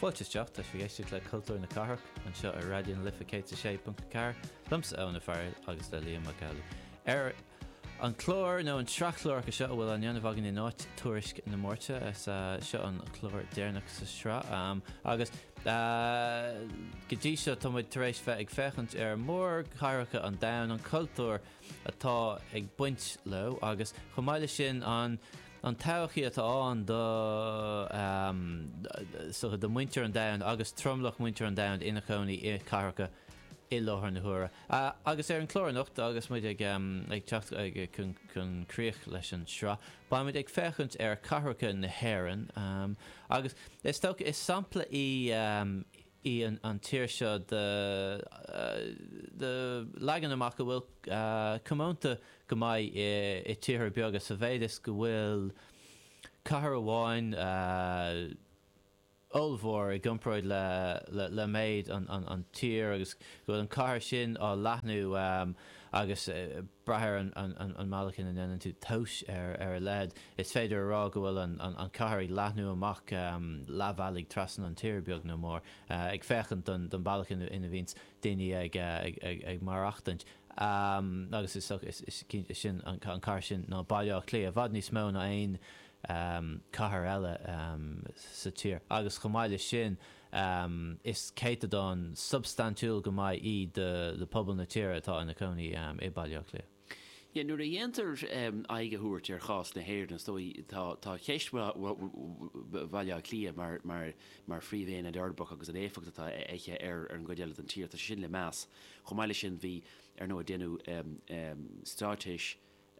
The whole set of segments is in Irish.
Fáilte isteach, tá sibh ag éisteacht le Cultúr na Cathrach anseo ar Raidió na Life 106.4 liomsa Eoin Ó Fearghail agus le Liam Mac Amhlaigh. Ar an chlár nó an sraith chláracha seo a bhfuil á dhéanamh againn in áit tuairisc na Máirte is seo an chlár deireanach sa sraith agus go dtí seo tá muid tar éis bheith ag féachaint ar mór cathracha an domhain an cultúr atá ag baint leo agus chomh maith leis sin an an todhchaí atá ann do mhuintir an domhain agus tromlach mhuintir an domhain ina chónaí i cathracha i láthair na huaire. Agus ar an chlár anocht agus muid ag teacht chun críoch leis an sraith, beimid ag féachaint ar chathracha na hÉireann agus is dócha, is sampla í, í an tír seo de leagan amach a bhfuil comónta go maith i tíortha beaga sa mhéid is go bhfuil cathair amháin ollmhór i gcomparáid le méid an tír agus go bhfuil an cathair sin á leathnú agus brath ar an mbealach ina ndéanann tú tomhas ar a leithéid. Is féidir a rá go bhfuil an chathair ag leathnú amach leathbhealaigh trasna an tíre, beag nó mór, ag féachaint don bhealach ina bhíonns daoine ag maireachtaint. Agus is dócha, sin an cathair sin ná Baile Átha Cliath, i bhfad níos mó ná aon chathair eile sa tír. Agus chomh maith leis sin, Is céatadán substaintiúil go maith í de phobal na tíre atá ina cónaí i mBaile Átha Cliath. Sea, nuair a dhéantar aghaidh a thabhairt ar chás na hÉireann, is dóigh, tá ceist Bhaile Átha Cliath mar phríomhaonad uirbeach agus an éifeacht atá aici ar an gcuid eile den tír, tá sé sin le meas. Chomh maith leis sin, bhí, ar ndóigh, déanadh Straitéis.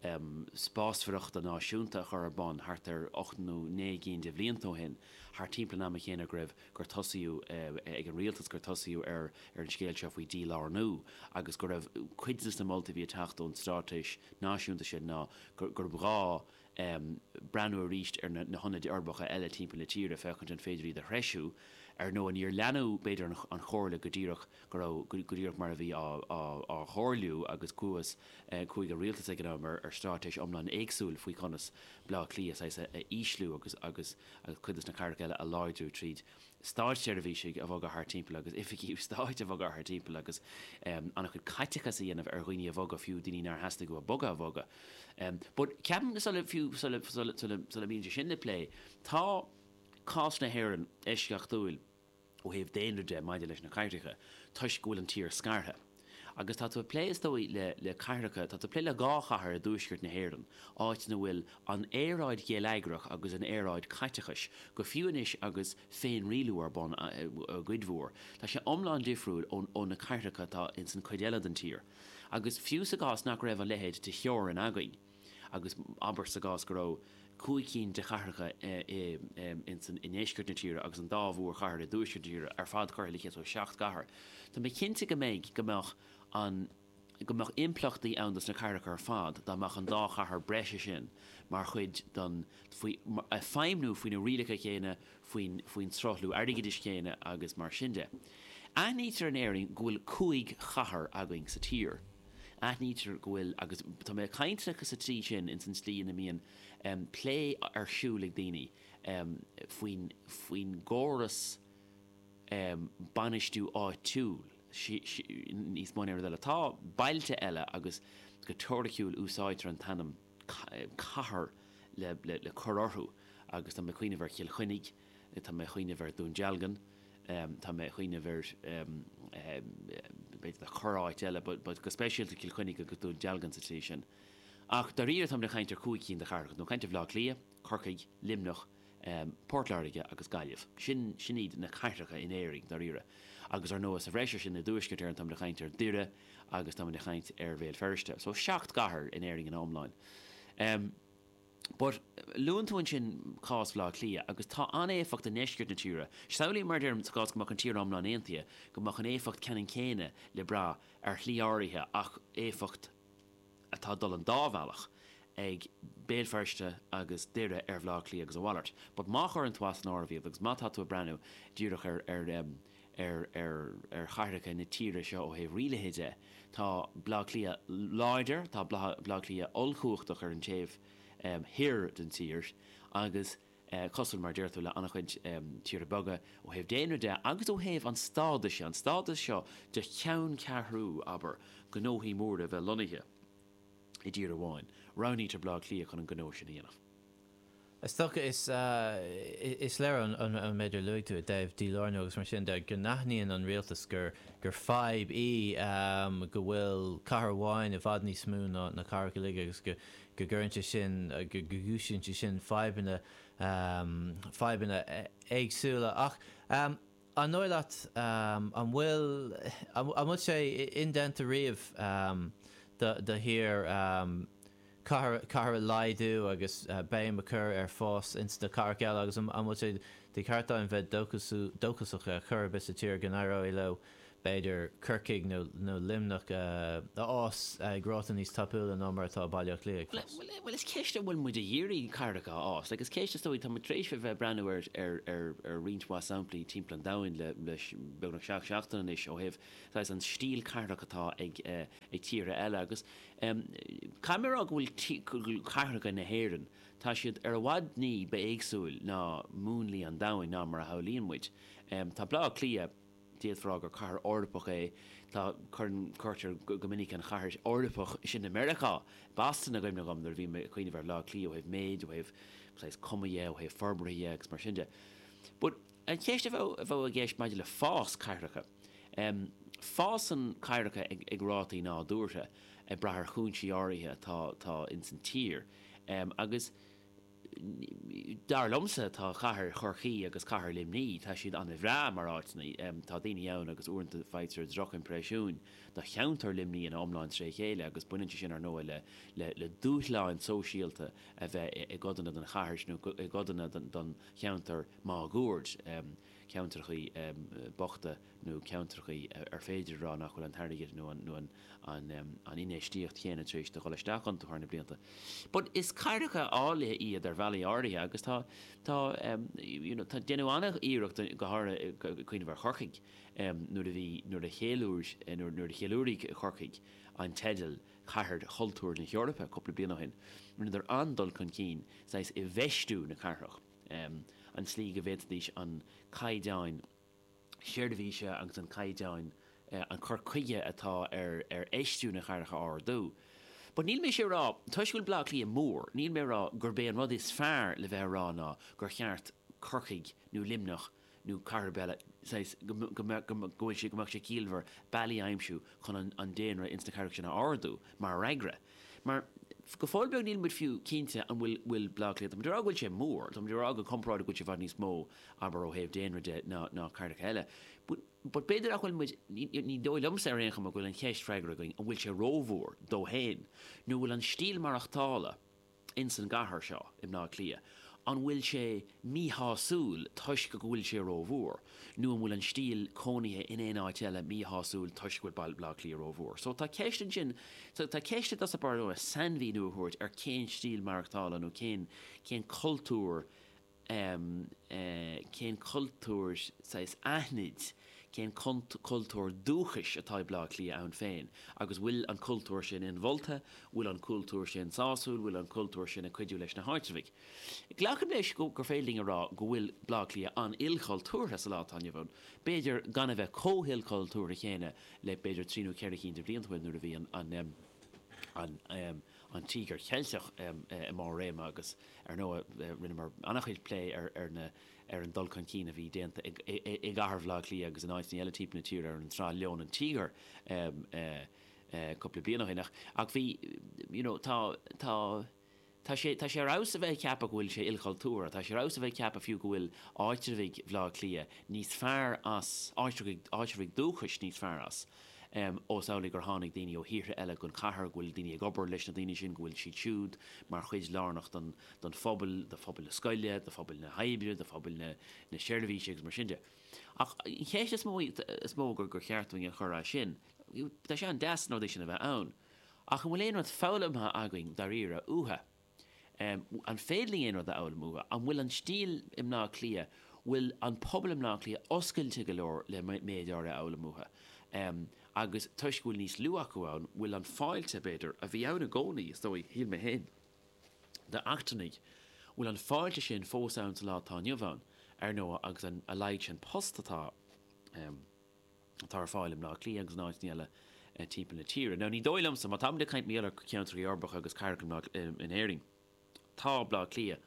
um Spásúlachta Náisiúnta a chur ar bun thart ar ocht nó naoi gcinn de bhlianta ó shin, thart timpeall an ama chéanna go raibh, gur tosaíodh, ag an Rialtas, gur tosaíodh ar an scéal seo faoi dhílárnú agus go raibh cuid de na moltaí a bhí ag teacht ón Straitéis Náisiúnta sin ná gur ghá breathnú arís ar na hionaid uirbeacha eile timpeall na tíre féachaint an féidir iad a threisiú. Ar ndóigh, níor leanadh b'fhéidir an chomhairle go díreach, go raibh go díreach mar a bhí á chomhairliú agus gur smaoinigh an rialtas ag an am ar straitéis iomlán éagsúil faoi conas Baile Átha Cliath saghas a ísliú agus agus agus cuid de na cathracha eile a láidriú tríd státseirbhísigh a bhogadh thart timpeall agus oifigí stáit a bhogadh thart timpeall agus an-chuid caiteachas a dhéanamh ar dhaoine a bhogadh fiú daoine nár theastaigh uathu bogadh a bhogadh um but ceapaim go sula fiú sula sula sula sula mbíonn sé sin le plé tá cás na hÉireann eisceachtúil. ó thaobh daonra de maidir leis na cathracha toisc go bhfuil an tír scartha. Agus tá tú ag plé, is dóigh, le, le cathracha, tá tú ag plé le dhá chathair i dtuaisceart na hÉireann, áit ina bhfuil an aeráid gheilleagrach agus an aeráid caiteachais, go fiú anois agus féinrialú ar bun i gcuid mhór, tá sé iomlán difriúil ó, ó na cathracha atá ins an chuid eile den tír. Agus fiú sa gcás nach raibh a leithéid de theorainn againn, agus abair sa gcás go raibh cúig cinn de chathracha i ndeisceart na tíre agus an dá mhórchathair i dtuaisceart na tíre ar fad curtha le chéile, so seacht gcathair, tá mé cinnte go mbeidh, go mbeadh an, go mbeadh impleachtaí ann dos na cathracha ar fad dá mbeadh an dá chathair breise sin mar chuid den, faoi, ag feidhmniú faoi na rialacha chéanna, faoin struchtúr airgeadais chéanna agus mar sin de. Aithnítear in Éirinn go bhfuil cúig chathair againn sa tír. Aithnítear go bhfuil, agus tá mé ag caint sa tslí sin, ins an tslí ina mbíonn plé ar siúl ag daoine faoin gcóras bainistiú áitiúil níos mó ná aon rud eile. Tá bailte eile agus go teoiriciúil úsáidtear an t-ainm. cathair le cur orthu agus tá mé ag cuimhneamh ar Chill Chainnigh, tá mé ag cuimhneamh ar Dún Dealgan, tá mé ag cuimhneamh ar b'fhéidir corráit eile but go speisialta Cill Chainnigh agus Dún Dealgan sa tslí sin. Ach dáiríre táimid ag caint ar chúig cinn de chathracha, nó ag caint ar Bhaile Átha Cliath, Corcaigh, Luimneach, Port Láirge agus Gaillimh. Sin, sin iad na cathracha in Éirinn, dáiríre. Agus, ar ndóigh, sa bhreis ar sin, i dTuaisceart Éireann, táimid ag caint ar Doire agus táimid ag caint ar Bhéal Feirste. So, seacht gcathair in Éirinn ina iomláine. But, luann tú ansin cás Bhaile Átha Cliath, agus tá an-éifeacht i ndeisceart na tíre. Samhlaím, mar a deirim, sa gcás go mbeadh an tír iomlán aontaithe, go mbeadh an éifeacht ceannann céanna le brath ar shlí áirithe ach éifeacht, atá ag dul an dá bhealach ag Béal Feirste agus Doire ar Bhleá Cliath agus a mhalairt. But má chuireann tú as an áireamh iad agus má tá tú ag breathnú díreach ar ar em ar ar ar chathracha na tíre seo ó thaobh rialaithe de, tá Bleá Cliath láidir, tá Bleá Bleá Cliath ollchumhachtach ar an taobh em thoir den tír agus eh é cosúil, mar a deir tú, le an-chuid tíortha beaga ó thaobh daonra de agus ó thaobh an stádais de, an stádas seo de cheanncheathrú, abair, gnóthaí móra bheith lonnaithe i dtír amháin. Roghnaítear Baile Átha Cliath chun an gnó sin a dhéanamh. Is dócha, is léir ón méid a luaigh tú i dtaobh dílárnú agus mar sin de, go n-aithníonn an rialtas gur fadhb í go bhfuil cathair amháin i bhfad níos mó ná na cathracha uilig agus go go gcuireann sé sin, go gcúisíonn sé sin fadhbanna, fadhbanna éagsúla. Ach an dóigh leat, an bhfuil, an bhfuil sé indéanta riamh do thír cathair a laghdú agus béim a chur ar fhás ins na cathracha eile agus an bhfuil sé de cheart againn bheith dóchasach ar chor ar bith sa tír go n-éireoidh leo b'fhéidir Corcaigh nó Luimneach a fhás ag ráta níos tapúla ná mar atá Baile Átha Cliath ag fás. Bhuel, is í an cheist an bhfuil muid ag iarraidh cathracha a fhás, agus an cheist, is dóigh, tá muid tar éis a bheith ag breathnú ar roinnt mhaith samplaí timpeall an domhain le beagnach seacht seachtaine anois ó thaobh saghas an stíl cathrach atá ag tíortha eile agus caithfidh mé a rá go bhfuil cathracha na hÉireann, tá siad ar i bhfad ní ba éagsúla ná múnlaí an domhain ná mar a shamhlaíonn muid. Tá Baile Átha Cliath. D'fhéadfá a rá gur cathair Eorpach é. Tá, cuireann, cuirtear go minic an chathair Eorpach sin i Meiriceá, Boston, i gcuimhne dhom nuair a bhím ag cuimhneamh ar Bhaile Átha Cliath ó thaobh méid, ó thaobh saghas cuma dhe, ó thaobh forbartha dhe agus mar sin de. But an cheist a bheadh, a bheadh i gceist maidir le fás cathracha, fásann cathracha ag, ag rátaí nádúrtha ag brath ar chúinsí áirithe atá, atá in san tír agus, Dar liomsa, tá cathair Chorcaí agus cathair Luimní, tá siad ana bhreá mar áiteanna. Tá daoine ann agus uaireanta faightear droch-impreisiún do cheantar Luimní ina iomlán trí chéile agus baineann sé sin ar ndóigh le dúshláin sóisialta a bheith i gcodanna den chathair sin nó i gcodanna den cheantar máguaird. ceantrachaí bochta nó ceantrachaí ar féidir a rá nach bhfuil an t-airgead nó an infheistíocht chéanna tar éis di dhul isteach iontu thar na blianta. But is cathracha áille iad ar bhealaí áirithe agus tá, tá, you know, tá, deineadh an-iarracht go háirithe ag cuimhneamh ar Chorcaigh nuair a bhí, nuair a cheiliúir, nuair a cheiliúraigh Corcaigh an teideal Cathair Chultúir na hEorpa cúpla bliain ó shin, rinneadar an-dul chun cinn, saghas i bhfeistiú na cathrach. an tslí go bhféadfadh an caighdeán seirbhíse agus an caighdeán an cur chuige atá ar ar fheistiú na gcathracha a ardú. But níl mise ag rá, toisc go bhfuil Bleá Cliath mór, níl mé ag rá gurb é an rud is fearr le bheith ag rá ná gur cheart Corcaigh nó Luimneach, nó cathair ar bith eile, saghas, go, go, go, go bhfuil sé, go mbeadh sé ciallmhar bealaí a aimsiú chun an, an daonra ins na cathracha sin a ardú mar fhreagra. Mar, go fóill beag níl muid fiú cinnte an bhfuil, bhfuil Bleá Cliath, tá muid ag rá go bhfuil sé mór, tá muid ag rá go comparáideach go bhfuil sé i bhfad níos mó, abair, ó thaobh daonra de ná, ná cathracha eile. But, but b'fhéidir nach bhfuil muid, ní, ní dóigh liomsa ar aon chuma go bhfuil an cheist freagartha againn, an bhfuil sé rómhór dó féin, nó an bhfuil an stíl maireachtála, ins an gcathair seo, i mBleá Cliath, an bhfuil sé míshásúil toisc go bhfuil sé rómhór, nó an bhfuil an stíl cónaithe in aon áit eile míshásúil toisc go bhfuil baile Bhleá Cliath rómhór. So tá ceist ansin, so tá ceist i dtús ab fhearr dúinn sainmhíniú a thabhairt ar cén stíl maireachtála nó cén, cén cultúr um cén cultúr saghas aithnid, cén cultúr dúchais atá i Bleá Cliath ann féin agus bhfuil an cultúr sin inmholta, bhfuil an cultúr sin sásúil, bhfuil an cultúr sin ag cuidiú leis na háitreabhaigh. Glacaim leis gur féidir linn a rá go bhfuil Bleá Cliath an-ilchultúrtha sa lá atá inniu ann, b'fhéidir gan a bheith chomh hilchultúrtha céanna le b'fhéidir trí nó ceithre chinn de bhlianta ó shin nuair a bhí an an Tíogar Ceilteach i mbarr réime agus ar ndóigh rinneamar an-chuid plé ar an dul chun cinn a bhí déanta i gcathair Bhaile Átha Cliath agus in áiteanna eile timpeall na tíre ar an tsraith Leon an Tíogair cúpla bliain ó shin ach bhí, you know, tá, tá, tá sé, tá sé ar fheabhas a bheith ag ceapadh go bhfuil sé ilchultúrtha, tá sé ar fheabhas a bheith ag ceapadh fiú go bhfuil áitreabhaigh Bhaile Átha Cliath níos fearr as, áitreabhaigh, áitreabhaigh dúchais níos fearr as. Ós amhlaidh gur tháinig daoine ó thíortha eile don chathair, go bhfuil daoine ag obair leis na daoine sin, go bhfuil siad siúd mar chuid lárnach don phobal, do phobal na scoile, do phobal na hoibre, do phobal na seirbhíse agus mar sin de. Ach an cheist is mó, is mó gur gur cheart dúinn a chur as sin, tá sé an-deas an rud sin a bheith ann, ach an bhfuil aon rud foghlamtha againn dáiríre uathu? An féidir linn aon rud a fhoghlaim uathu? An bhfuil an stíl i mBleá Cliath, bhfuil an pobal i mBleá Cliath oscailte go leor le méid áirithe a fhoghlaim uathu? Agus toisc go bhfuil níos lú acu ann, bhfuil an fáilte, b'fhéidir, a bhí ann i gcónaí, is dóigh, shíl mé féin, d'eachtrannaigh, bhfuil an fáilte sin fós ann sa lá atá inniu ann, ar ndóigh, agus a laghad sin post atá. atá ar fáil i mBleá Cliath agus in áiteanna eile timpeall na tíre. Now ní dóigh liomsa, má táimid ag caint maidir le ceantracha uirbeacha agus cathracha in Éirinn, tá Bleá Cliath,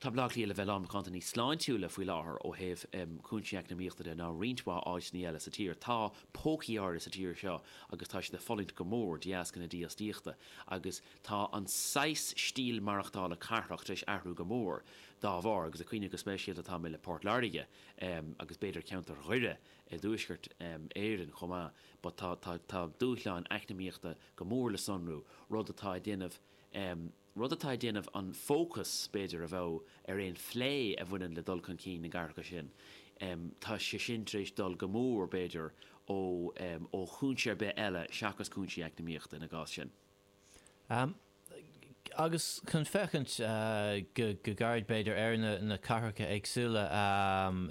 tá Bleá Cliath le bheith lán macánta níos sláintiúla faoi láthair ó thaobh cúinsí eacnamaíochta de ná roinnt mhaith áiteanna eile sa tír. Tá pócaí áirithe sa tír seo agus tá siad ag fulaingt go mór de dheasca na dífhostaíochta agus tá an saghas stíl maireachtála cathrach tar éis athrú go mór dá bharr agus ag cuimhneamh go speisialta atá mé le Port Láirge agus b'fhéidir ceantar Dhoire i dTuaisceart Éireann chomh maith, but tá dúshláin eacnamaíochta go mór le sonrú, rud atá ag déanamh rud atá ag déanamh an fócas, b'fhéidir, a bheadh ar aon phlé a bhaineann le dul chun cinn na gcathracha sin, tá sé sin tar éis dul go mór, b'fhéidir, ó chúinse ar bith eile seachas cúinsí eacnamaíochta ina gcás sin. agus chun féachaint go gairid b'fhéidir ar na cathracha éagsúla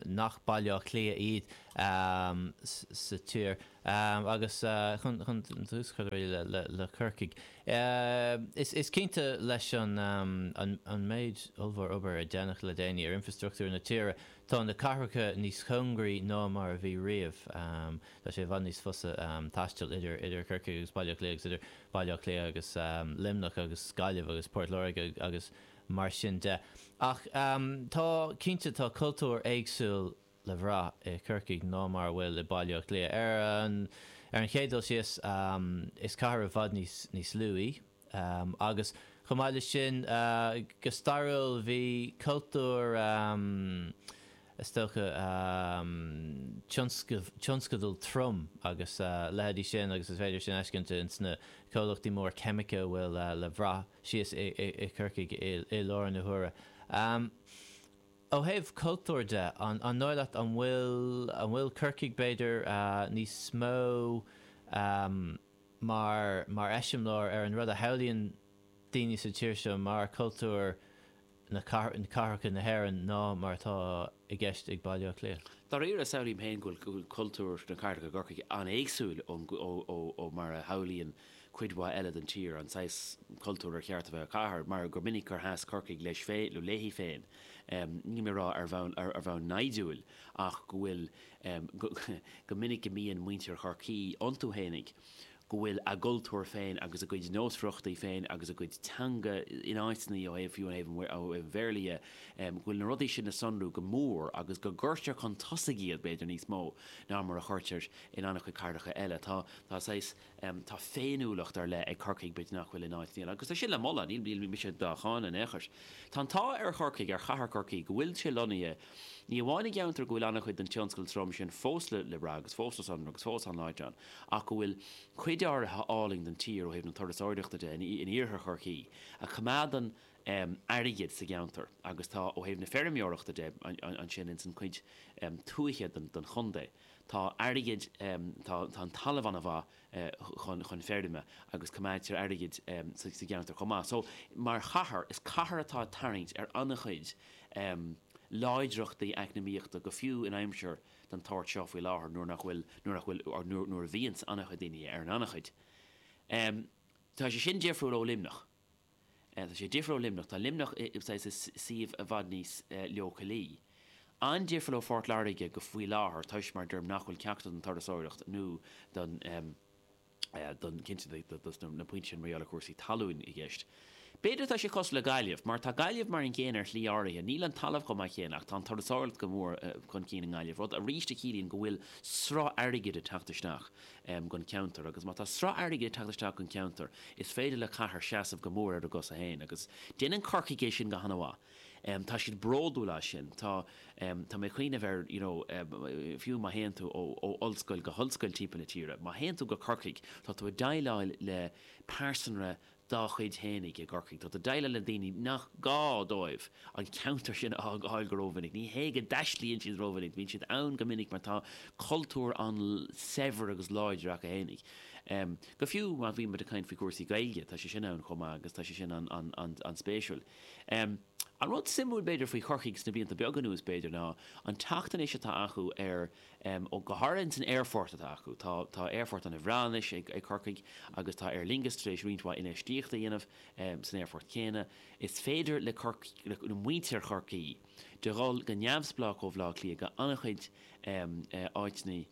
nach Baile Átha Cliath iad sa tír agus chun tús a chur le Chorcaigh. Is cinnte leis an méid ollmhór obair a déanadh le déanaí ar infrastructúr na tíre tá na cathracha níos chóngaraí ná mar a bhí riamh. Tá sé i bhfad níos fusa taisteal idir Corcaigh agus Baile Átha Cliath agus idir Baile Átha Cliath agus Luimneach agus Gaillimh agus Port Láirge agus mar sin de. Ach tá, cinnte, tá cultúr éagsúil le bhrath i Chorcaigh ná mar a bhfuil i Baile Átha Cliath. Ar an chéad dul síos, is cathair i bhfad níos lú í. agus chomh maith leis sin, go stairiúil, bhí cultúr, is dócha, tionscadal trom agus a leithéidí sin agus is féidir sin a fheiscint in sna comhlachtaí móra ceimice a bhfuil le bhrath síos i Chorcaigh i láthair na huaire. Ó thaobh cultúir de, an dóigh leat, an bhfuil Corcaigh, b'fhéidir, níos mó. mar mar eiseamláir ar an rud a shamhlaíonn daoine sa tír seo mar cultúr na cathracha na hÉireann ná mar atá i gceist ag Baile Átha Cliath. Dáiríre, samhlaím féin go bhfuil cultúr na cathracha i gCorcaigh an-éagsúil ó mar a shamhlaíonn cuid mhaith eile den tír an saghas cultúir ar cheart a bheith ag cathair, mar gur minic gur sheas Corcaigh leis féin nó léi féin, nílim á rá ar bhonn naimhdiúil, ach go bhfuil. em, go minic go mbíonn muintir Chorcaí iontu fhéinig, go bhfuil a gcultúr féin agus a gcuid nósmhaireachtaí féin agus a gcuid teanga in áiteannaí ó thaobh, fiú ó thaobh an, ó thaobh an Bhéarla dhe, em, go bhfuil na rudaí sin le sonrú go mór agus go gcuirtear chun tosaigh iad, b'fhéidir, níos mó ná mar a chuirtear in an-chuid cathracha eile. Tá, tá saghas. Tá féiniúlacht ar leith ag Corcaigh, b'fhéidir nach bhfuil in áit, níl, agus tá sin le moladh, níl mise dá cháineadh in aon chor. Tá an t-ádh ar Chorcaigh, ar chathair Chorcaí, go bhfuil sé lonnaithe ní amháin i gceantar go bhfuil an-chuid den tionscal trom sin fós le brath agus fós le sonrú agus fós an-láidir ann, ach go bhfuil cuid fhairsing álainn den tír, ó thaobh na turasóireachta de, in iarthar Chorcaí a choimeádann airgead sa gceantar agus tá, ó thaobh na feirmeoireachta de, ansin ins an chuid tuaithe den chontae. Tá airgead, tá an talamh an-mhaith chun feirme agus coimeádtar airgead sa gceantar chomh maith. So, mar chathair, is cathair atá ag tarraingt ar an-chuid láidreachtaí eacnamaíochta, go fiú in aimsir den tsórt seo faoi láthair nuair nach bhfuil, nuair nach bhfuil, nuair a bhíonns an-chuid daoine ar an anachain. Tá sé sin difriúil ó Luimneach. Tá sé difriúil ó Luimneach. Tá Luimneach i suíomh i bhfad níos leochailí. An-difriúil ó Phort Láirge faoi láthair toisc, mar a deirim, nach bhfuil ceachtar den turasóireacht nó don, don, cinnte dos na pointí sin mar gheall ar chúrsaí talúin i gceist. B'fhéidir atá sé cosúil le Gaillimh, mar tá Gaillimh mar an gcéanna ar shlí áirithe. Níl an talamh chomh maith céanna ach tá an turasóireacht go mór chun cinn i nGaillimh, rud arís a chiallaíonn go bhfuil sruth airgid ag teacht isteach. don cheantar agus má tá sruth airgid ag teacht isteach don cheantar is féidir le cathair seasamh go mór ar a gcosa féin agus déanann Corcaigh é sin go han-mhaith. Tá siad bródúil as sin. Tá tá mé ag cuimhneamh ar you know fiú má théann tú ó ó ollscoil go hollscoil timpeall na tíre, má théann tú go Corcaigh tá tú ag déileáil le pearsanra dá chuid fhéinig i gCorcaigh. Tá tú ag déileáil le daoine nach gá dóibh an ceantar sin a fhágáil go rómhinic. Ní hé go dtaistlíonn siad rómhinic, bíonn siad ann go minic mar tá cultúr an-saibhir agus láidir acu fhéinig. Fiú má bhíonn muid ag caint faoi chúrsaí Gaeilge, tá sé sin ann chomh maith agus tá sé sin an-spéisiúil. An rud suimiúil b'fhéidir faoi Chorcaigh sna blianta beaga anuas b'fhéidir ná an teacht anois atá acu ar Ó go háirithe ins an aerfort atá acu. Tá tá aerfort ana bhreá anois ag ag Corcaigh agus tá Aer Lingus tar éis roinnt mhaith infheistíochta a dhéanamh san aerfort céanna. Is féidir le Corcaigh, le muintir Chorcaí dul go neamhspleách ó Bhaile Átha Cliath go an-chuid áiteanna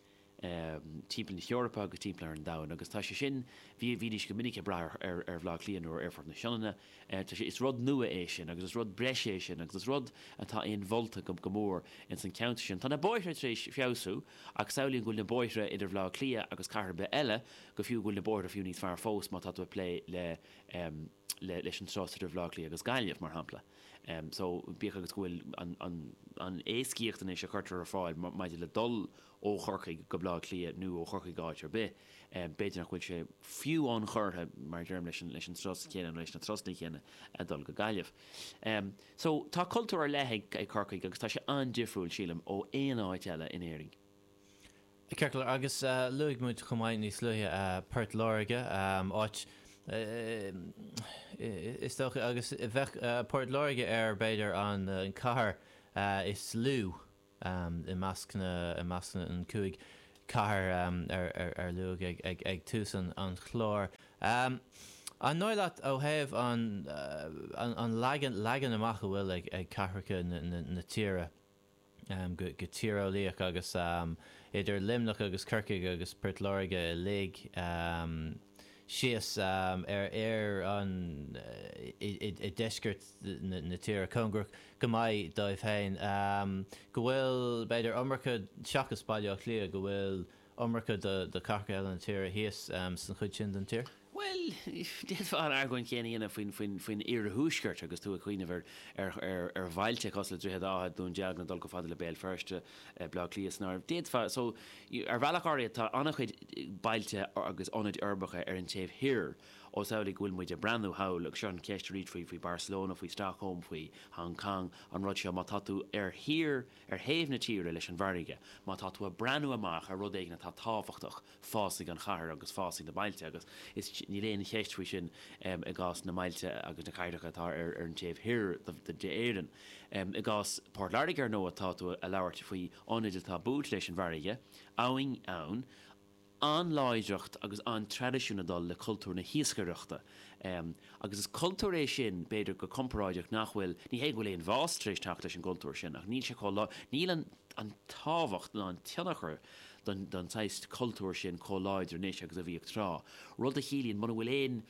timpeall na hEorpa agus timpeall ar an domhain agus tá sé sin, bhí bhídís go minic ag brath ar ar Bhaile Átha Cliath nó ar aerfort na Sionainne. Tá sé, is rud nua é sin agus is rud breise é sin agus is rud atá inmholta go mór ins an cheantar sin. Tá na bóithre tar éis feabhsú ach samhlaím go bhfuil na bóithre idir Bhaile Átha Cliath agus cathair ar bith eile, go fiú, go bhfuil na bóithre fiú níos fearr fós má tá tú ag plé le, leis an turas idir Bhaile Átha Cliath agus Gaillimh, mar shampla. So, bíodh agus go bhfuil an, an, an éascaíocht anois a chuirtear ar fáil maidir le dul ó Chorcaigh go Baile Átha Cliath nó ó Chorcaigh go áit ar bith, b'fhéidir nach bhfuil sé fiú ionchurtha, mar a deirim, leis an turas céanna nó leis na turasanna céanna a dhul go Gaillimh. So, tá cultúr ar leith ag Corcaigh agus tá sé an-difriúil, sílim, ó aon áit eile in Éirinn. Ceart go leor, agus luaigh muid chomh maith níos luaithe Port Láirge, áit, is dócha, agus bheadh Port Láirge ar, b'fhéidir, an cathair is lú, I measc na cúig chathair a luadh ag tús an chláir, an dóigh leat, ó thaobh an leagan amach a bhfuil ag cathracha na tíre go tíreolaíoch agus idir Luimneach agus Corcaigh agus Port Láirge uilig, síos ar ar an i ndeisceart na tíre, cóngarach go maith dóibh féin, go bhfuil, b'fhéidir, iomarca, seachas Baile Átha Cliath, go bhfuil iomarca de cathracha eile na tíre thíos san chuid sin den tír? Bhuel, d'fhéadfá an argóint chéanna a dhéanamh faoin iarthuaisceart agus tú ag cuimhneamh ar bhailte cosúil le Droichead Átha, Dún Dealgan, ag dul chomh fada le Béal Feirste, Bleá Cliath san áireamh. D'fhéadfá, so, ar bhealach áirithe tá an-chuid bailte agus ionaid uirbeacha ar an taobh thoir, ós amhlaidh go bhfuil muid ag breathnú thall, agus seo an cheist arís faoi, faoi Barcelona, faoi Stockholm, faoi Hong Cong, an rud seo, má tá tú ar thír, ar thaobh na tíre leis an bhfarraige, má tá tú ag breathnú amach ar rud éigin atá tábhachtach, fásfaidh an chathair agus fásfaidh na bailte agus is, níl aon cheist faoi sin i gcás na mbailte agus na cathracha atá ar an taobh thoir d'Éirinn. I gcás Port Láirge, ar ndóigh, tá tú a' labhairt faoi ionad atá buailte leis an bhfarraige, abhainn ann, an-láidreacht agus an-traidisiún ag dul le cultúr na hiascaireachta agus is cultúr é sin, b'fhéidir, go comparáideach nach bhfuil, ní hé go bhfuil aon bhás tar éis teacht leis an gcultúr sin ach níl sé chomh, níl an tábhacht ná an tionchar, den saghas cultúir sin chomh láidir anois agus a bhíodh tráth, rud a chiallaíonn, muna bhfuil aon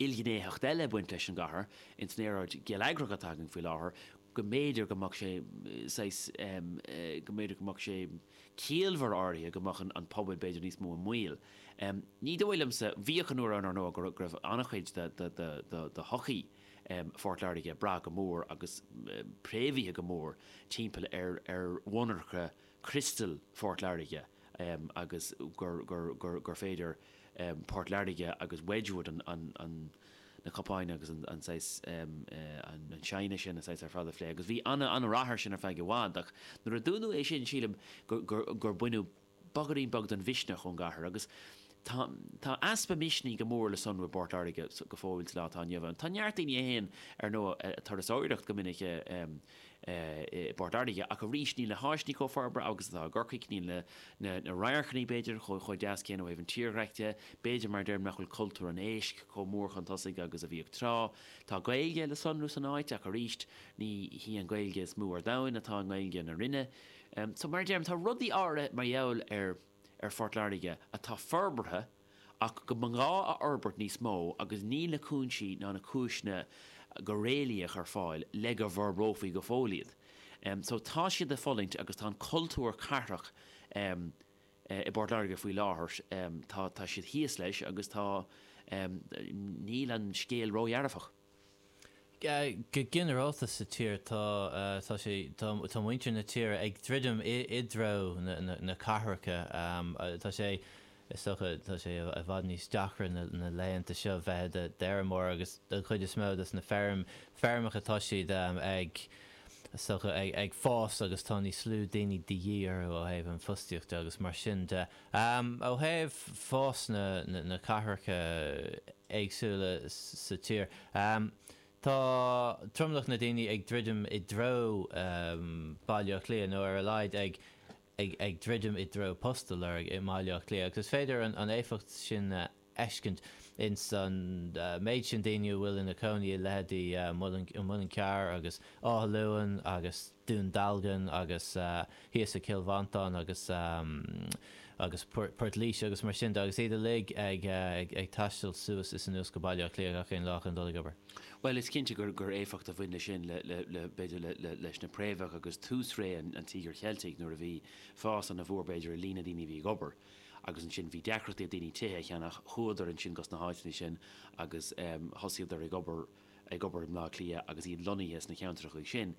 ilghnéitheacht eile ag baint leis an gcathair ins an aeráid gheilleagrach atá againn faoi láthair, go mb'fhéidir go mbeadh sé saghas, go mb'fhéidir go mbeadh sé i gciall áirithe go mbeadh an pobal b'fhéidir níos mó i mbaol. Ní dóigh liomsa, bhíodh an uair ann, ar ndóigh, go raibh an-chuid de shochaí Phort Láirge ag brath go mór agus préamhaithe go mór timpeall ar mhonarcha Crystal Phort Láirge agus gur féidir Port Láirge agus Wedgwood na cupáin agus an saghas an china sin a saghas ar fad a phlé agus bhí ana ana rath ar sin ar feadh i bhfad ach nuair a dúnadh é sin sílim gur baineadh bogairín beag den mhisneach ón gcathair agus Tá easpa misnigh go mór le sonrú i bPort Láirge go fóill sa lá atá inniu ann. Tá neart daoine a théann, ar ndóigh, ag turasóireacht go minic i bPort Láirge, ach arís níl na háiseanna chomh forbartha agus atá i gCorcaigh, níl na radharcanna, b'fhéidir, chomh deas céanna ó thaobh an tírdhreic de, b'fhéidir mar a deirim, nach bhfuil cultúr an éisc chomh mór chun tosaigh agus a bhíodh tráth. Tá Gaeilge le sonrú san áit, ach arís ní hí an Ghaeilge is mó ar domhain atá i nGaeilge na Rinne. So, mar a deirim, tá rudaí áirithe mar gheall ar. ar Phort Láirge atá forbartha ach go mba ghá a fhorbairt níos mó agus níl na cúinsí ná na cúiseanna go réalaíoch ar fáil le go bhforbrófaí go fóill iad. So tá siad ag fulaingt agus tá an cultúr cathrach i bPort Láirge faoi láthair, tá siad thíos leis agus tá, níl an scéal ródhearfach. Go ginearálta sa tír tá muintir na tír ag druidim i dtreo na cathracha. Tá sé, is dócha, tá sé i bhfad níos deacra na laethanta seo bheith i d'fheirmeoir agus don chuid is mó dos na feirmeacha tá siad ag fás agus tá níos lú daoine de dhíth orthu ó thaobh an fostaíocht de agus mar sin de Ó thaobh fás na cathracha éagsúla sa tír, tá tromlach na daoine ag druidim i dtreo Baile Átha Cliath, nó ar a laghad ag druidim i dtreo post a lorg i mBaile Átha Cliath, agus is féidir an éifeacht sin a. fheiscint ins an méid sin daoine a bhfuil ina gcónaí i leitheidí Muileann Cearr agus Áth Luain agus Dún Dealgan agus thíos i gCill Mhantáin agus agus Port Laoise agus mar sin de agus iad uilig ag ag taisteal suas is anuas go Baile Átha Cliath gach aon lá chun dul ag obair. Bhuel is cinnte gur éifeacht a bhain le sin le le le b'fhéidir le le leis na préamhacha agus tús ré an Tíogair Cheiltigh nuair a bhí fás ana mhór b'fhéidir i líon na daoine a bhí ag obair agus ansin bhí deacrachtaí ag daoine tithe a cheannach, chuadar ansin gos na háiteanna sin agus thosaíodar ag obair, ag obair i mBleá Cliath agus iad lonnaithe sna ceantrachaí sin.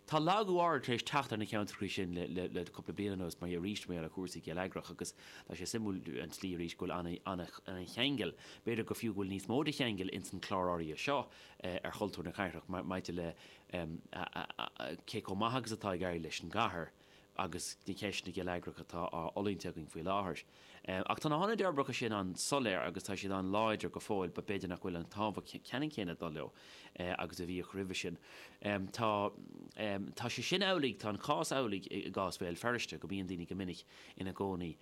Tá lagú áirid tar éis teacht ar na ceantrachaí sin le, le, le cúpla bliain anuas mar gheall, arís, mar gheall ar chúrsaí geilleagrach agus tá sé suimiúil an tslí arís go bhfuil ana, ana, ana cheangal, b'fhéidir go fiú go bhfuil níos mó de cheangal ins an chlár áirithe seo ar chultúr na cathrach maidir le cé comh maith agus atá ag éirí leis an gcathair. agus na ceisteanna geilleagracha atá á fhulaingt againn faoi láthair. Ach tá na hionaid fhorbartha sin an-soiléir agus tá siad an-láidir go fóill, b'fhéidir nach bhfuil an tábhacht ceannann céanna ag dul leo agus a bhíodh roimhe sin. Tá sé sin amhlaidh, tá an cás amhlaidh i gcás Bhéal Feirste, go mbíonn daoine go minic ina gcónaí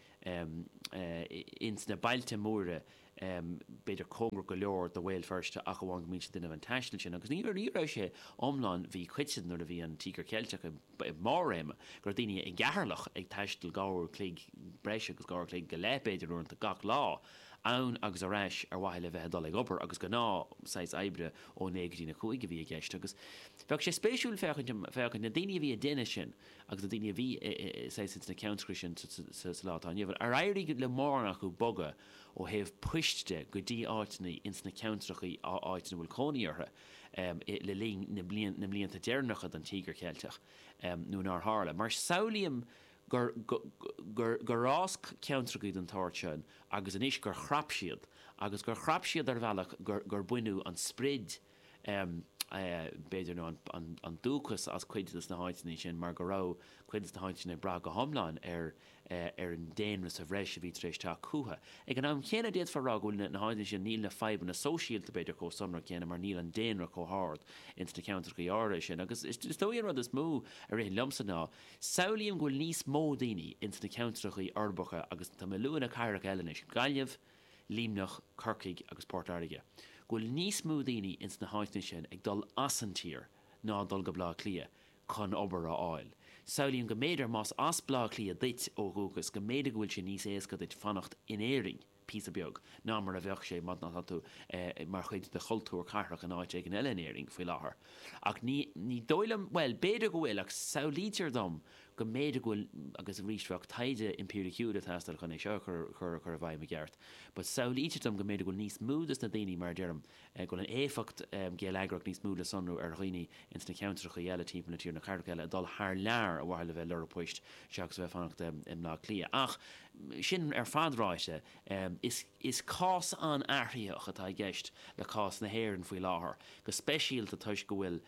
ins na bailte móra, b'fhéidir cóngarach go leor do Bhéal Feirste ach amháin go mbíonn siad ag déanamh an taistil sin agus ní raibh sé iomlán, bhí cuid de, nuair a bhí an Tíogar Ceilteach i mbarr a réime, go raibh daoine i gCeatharlach ag taisteal dhá uair a chloig, breis agus dhá uair a chloig go leith b'fhéidir uaireanta, gach lá, ann agus ar ais ar mhaithe le bheith ag dul ag obair agus gnáth saghas oibre ó naoi go dtína cúig a bhí i gceist agus bheadh sé spéisiúil féachaint, féachaint, na daoine a bhí ag déanamh sin agus na daoine a bhí saghas ins na ceantracha sin sa lá atá inniu ann, ar éirigh le mórán acu bogadh? ó thaobh poist de, go dtí áiteanna ins na ceantrachaí áit ina bhfuil cónaí orthu le linn na mblianta deireanacha den Tíogar Ceilteach nó nár tharla, mar samhlaím, gur fhás ceantrachaí den tsórt sin agus anois gur chrap siad agus gur chrap siad ar bhealach gur baineadh an sprid b'fhéidir, nó an dúchas as cuid de na háiteanna sin mar go raibh cuid de na háiteanna ag brath go hiomlán ar an daonra sa bhreis a bhí tar éis teacht chucu. Ag an am chéanna, d'fhéadfá a rá go bhfuil na háiteanna sin, níl na fadhbanna sóisialta, b'fhéidir, chomh sonrach céanna mar níl an daonra chomh hard ins na ceantrachaí áirithe sin. Agus is dóigh an rud is mó a ritheann liomsa ná, samhlaím go bhfuil níos mó daoine ins na ceantrachaí uirbeacha agus tá mé ag lua na cathracha eile anois, Gaillimh, Luimneach, Corcaigh agus Port Láirge, go bhfuil níos mó daoine ins na háiteanna sin ag dul as an tír ná ag dul go Baile Átha Cliath chun obair a fháil. Samhlaím go mb'fhéidir más as Baile Átha Cliath duit ó dhúchas go mb'fhéidir go bhfuil sé níos éasca duit fanacht in Éirinn píosa beag ná mar a bheadh sé má tá tú mar chuid de chultúr cathrach in áit éigin eile in Éirinn faoi láthair ach ní dóigh liom, bhuel, b'fhéidir go bhfuil ach samhlaítear dom go mb'fhéidir go bhfuil agus arís bheadh taighde impíriciúil ag teastáil chun é seo a chur i bhfeidhm i gceart but samhlaítear dom go mb'fhéidir go bhfuil níos mó de na daoine mar a deirim go bhfuil an éifeacht gheilleagrach níos mó le sonrú ar dhaoine ins na ceantrachaí eile timpeall na tíre na cathracha eile ag dul thar lear ar mhaithe le bheith ag lorg poist seachas a bheith ag fanacht i mBleá Cliath ach sin ar fad ráite is cás an-athraitheach atá i gceist le cás na hÉireann faoi láthair go speisialta toisc go bhfuil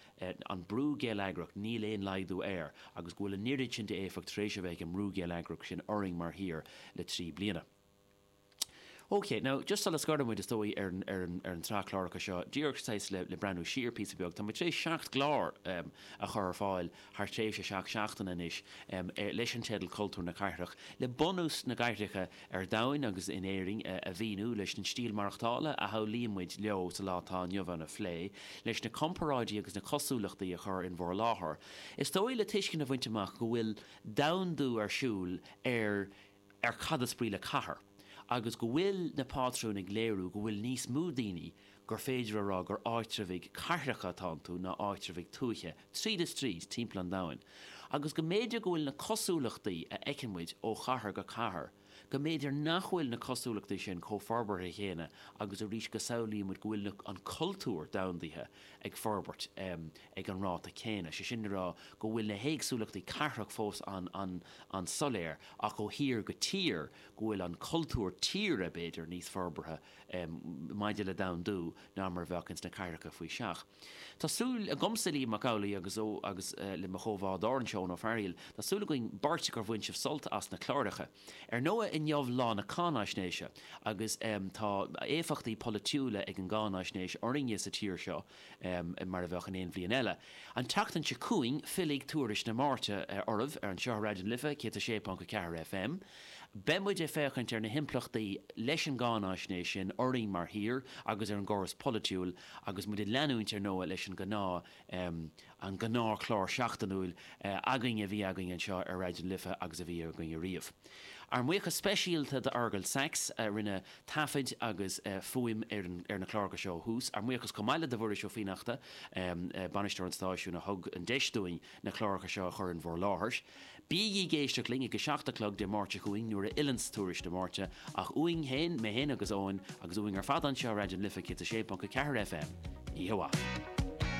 an brú geilleagrach, níl aon laghdú air, agus go bhfuil an oiread sin d'éifeacht tar éis a bheith ag an mbrú geilleagrach sin orainn mar thír le trí bliana. OK, now, just sula scoireann muid, is dóigh, ar an, ar an, ar an tsraith cláracha seo, díreach saghas le, le breathnú siar píosa beag, tá muid tar éis seacht gclár a chur ar fáil thar thréimhse seacht seachtaine anois, leis an teideal Cultúr na Cathrach, le bunús na gcathracha ar domhain agus in Éirinn a mhíniú, leis an stíl mhaireachtála a shamhlaíonn muid leo sa lá atá inniu ann a phlé, leis na comparáidí agus na cosúlachtaí a chur in bhur láthair, is dóigh, le tuiscint a bhaint amach go bhfuil domhandú ar siúl ar ar cad is brí le cathair agus go bhfuil na pátrúin ag léiriú go bhfuil níos mó daoine gur féidir a rá gur áitreabhaigh cathracha atá iontu ná áitreabhaigh tuaithe, tríd is tríd, timpeall an domhain, agus go mb'fhéidir go bhfuil na cosúlachtaí a fheiceann muid ó chathair go cathair, go mb'fhéidir nach bhfuil na cosúlachtaí sin chomh forbartha chéanna agus arís go samhlaíonn muid go bhfuil an cultúr domhandaithe ag forbairt ag an ráta céanna, sé sin le rá go bhfuil na héagsúlachtaí cathrach fós an-soiléir ach ó thír go tír go bhfuil an cultúr tíre, b'fhéidir, níos forbartha. maidir le domhandú ná mar a bheadh ins na cathracha faoi seach. Tá súil agamsa, Liam Mac Amhlaigh, agus le mo chomhbhádóir anseo, Eoin Ó Fearaíl, tá súil againn beirt gur bhain sibh sult as na cláracha. Ar ndóigh, inniu lá na cáináisnéise agus tá éifeachtaí polaitiúla ag an gcáináisnéis orainne sa tír seo mar a bheadh in aon bhliain eile. An tseachtain seo chugainn fillfidh Tuairisc na Máirte oraibh ar anseo ar Raidió na Life 106.4 FM. Beidh muid ag féachaint ar na himpleachtaí leis an gcáinaisnéis sin orainn mar thír agus ar an gcóras polaitiúil agus muid ag leanúint ar ndóigh leis an ngnáthchlár seachtainiúil againn a bhí againn anseo ar Raidió na Life agus a bhí againn ariamh. Ár mbuíochas speisialta d'Fhearghal Saxe a rinne taifead agus fuaim ar na cláracha seo ó thús. Ár mbuíochas chomh maith le do Mhuiris Ó Fiannachta, bainisteoir an stáisiúin, a thug an deis dúinn na cláracha seo a chur in bhur láthair. Bígí ag éisteacht linn ag a seacht a chlog Dé Máirt seo chugainn nuair a fhilleanns Tuairisc na Máirte, ach uainn féin, mé féin agus Eoin, agus uainn ar fad anseo i Raidió na Life 106.4 FM, oíche mhaith.